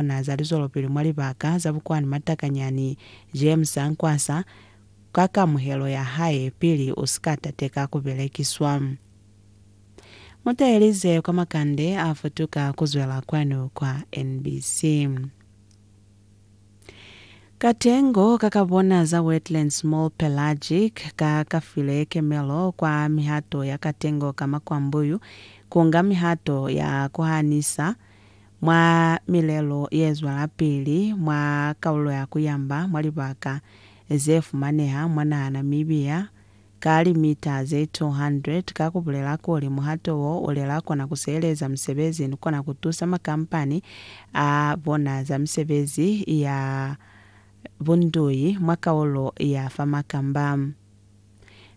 zona za lizwelopili mwa libaka za bukwani matakanyani je musa nkwasa ka kamuhelo ya hae pili u si ka tateka ku belekiswa. Mu tahelize kwa makande a futuka ku zwela kwanu kwa NBC. Katengo ka ka bona za wetland small pelagic ka ka file kemelo kwa mihato ya katengo ka makwambuyu ku nga mihato ya ku hanisa Mwa milelo yezwelapili mwa kalulo ya kuyamba mwa libaka zefumaneha mwa naha Namibia, ka limita ze 200, ka kubulela kuli muhato wo ulela kona kusiheleza misebezi ni kona kutusa makampani a bona za misebezi ya bundui mwa kalulo ya fa makamba.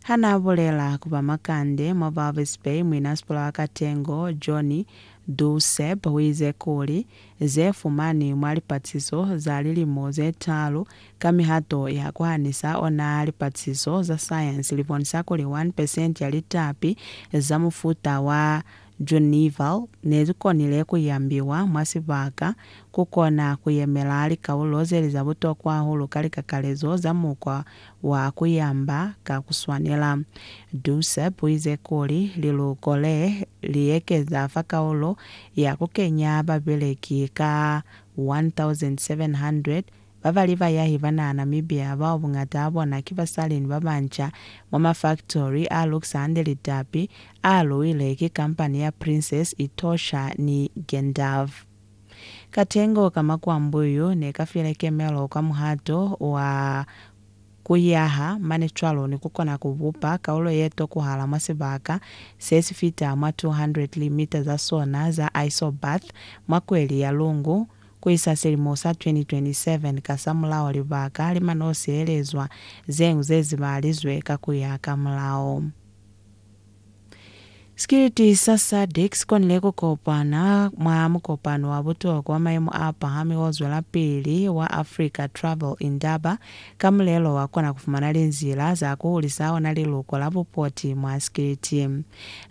Ha n'a bulela ku ba makande mwa Walvis Bay, muinasikola wa katengo John Duuseb u ize kuli, Ze fumanwi mwa lipatisiso za lilimo ze taalu ka mihato ya ku hanisa ona lipatisiso za sayansi li bonisa kuli 1 percent ya litapi za mufuta wa Junival ne li konile ku yambiwa mwa sibaka ku kona ku yemela likaulo ze li za butokwa hahulu ka likakalezo za mukwa wa ku yamba ka ku swanela. Dussep u ize kuli, Liluko le li ekeza fa kaulo ya ku kenya babeleki ka 1,700 ba ba li bayahi ba naha Namibia bao buñata bona ki basali ni ba banca mwa mafaktori a lukisa hande litapi a luile ki kampani ya Princes Etosha ni Gendav. Katengo ka makwambo yo ne ka file kemelo kwa muhato wa ku yaha mane cwalo ni ku kona ku bupa kaulo ye tokuhala mwa sibaka se si fita mwa 200 limita za sona za isobath mwa kweli ya Lungu ku isa silimo sa 2027. Kasamulaho libaka li man'o sielezwa zeñwi ze zibalizwe ka ku ya ka mulao. Sikiliti sa SADC si konile ku kopana mwa mukopano wa butokwa wa mayemo a pahami o zwelapili wa Africa Travel Indaba ka mulelo wa kona ku fumana linzila za ku hulisa ona liluko la bupoti mwa sikiliti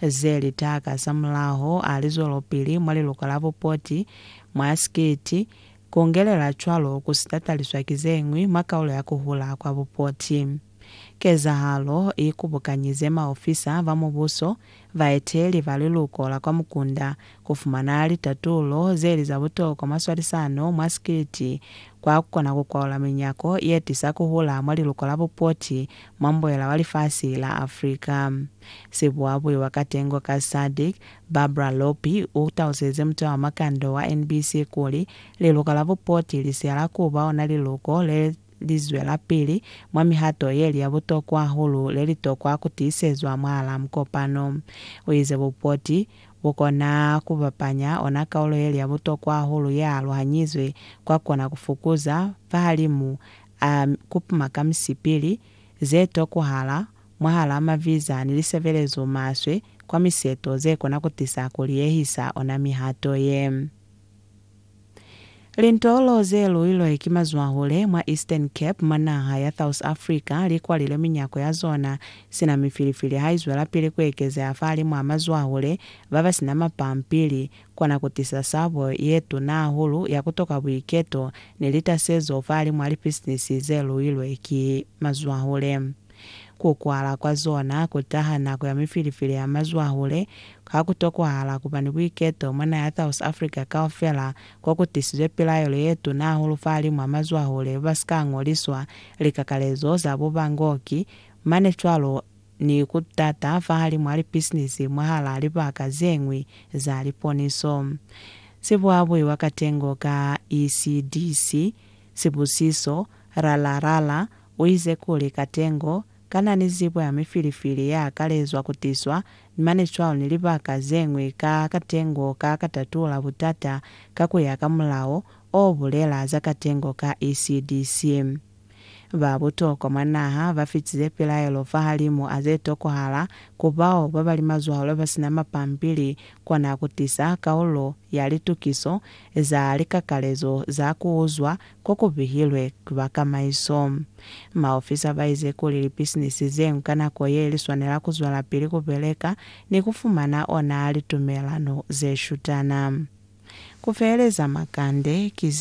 ze li taka. Samulaho a li zwelopili mwa liluko la bupoti mwa sikiliti, ku ngelela cwalo ku si tataliswa ki ze ñwi mwa kaulo ya ku hula kwa bupoti. Kezahalo i kubukanyize maofisa ba mubuso, baeteli ba liluko la kwa mukunda, ku fumana litatulo ze li za butokwa mwa swalisano mwa sikiliti kwa ku kona ku kwaula minyako ye tisa ku hula mwa liluko la bupoti mwa mbuela wa lifasi la Africa. Sibuabuiwa ka tengo ka SADC, Barbara Lopi, u taluselize muta wa makando wa NBC kuli, Liluko la bupoti li siyala ku ba ona liluko le li zwelapili mwa mihato ye li ya butokwa hahulu le li tokwa ku tiisezwa mwahalaa mukopano. U ize bupoti bu kona ku bapanya ona kaulo ye li ya butokwa hahulu ye aluhanyizwe kwa kona ku fukuza fahalimu a ku puma ka misipili ze tokwahala mwahalaa maviza ni lisebelezo maswe kwa miseto ze kona ku tisa ku liyehisa ona mihato ye. Lintolo ze luilwe ki mazwahule mwa Eastern Cape mwa naha ya South Africa li kwalile minyako ya zona sina mifilifili ha i zwelapili ku ekezeha fahalimwaa mazwahule ba ba sina mapampili, kona ku tisa sabo ye tuna hahulu ya ku toka buiketo ni litasezo fahalimwaa lipisinisi ze luilwe ki mazwahule. Ku kwala kwa zona ku taha nako ya mifilifili ya mazwahule, ha ku tokwahala ku ba ni buiketo mwa naha ya South Africa kaufela ko ku tisizwe pilaelo ye tuna hahulu fahalimu a mazwahule ba si ka ñoliswa likakalezo za bubangoki, mane cwalo ni ku tata fahalimu a lipisinisi mwahalaa libaka ze ñwi za liponiso. Sibuabui wa katengo ka ECDC, Sibusiso, Ralarara u ize kuli, Katengo, kana ni zibo ya mifilifili ya akalezwa ku tiswa ni mane cwalo ni libaka ze ñwi ka katengo ka ka tatula butata ka ku ya ka mulao o bulela za katengo ka ECDC? Ba butokwa mwa naha ba fitize pilaelo fahalimu a ze tokohala ku bao ba ba li mazwalo ba si na mapampili Kona ku tisa kaulo ya litukiso za likakalezo za ku uzwa ko ku bihilwe ki ba kamaiso. Maofisa ba ize kuli lipisinisi ze nka nako ye li swanela ku zwelapili ku beleka ni ku fumana ona litumelano ze shutana. Ku feheleza makande ki ze.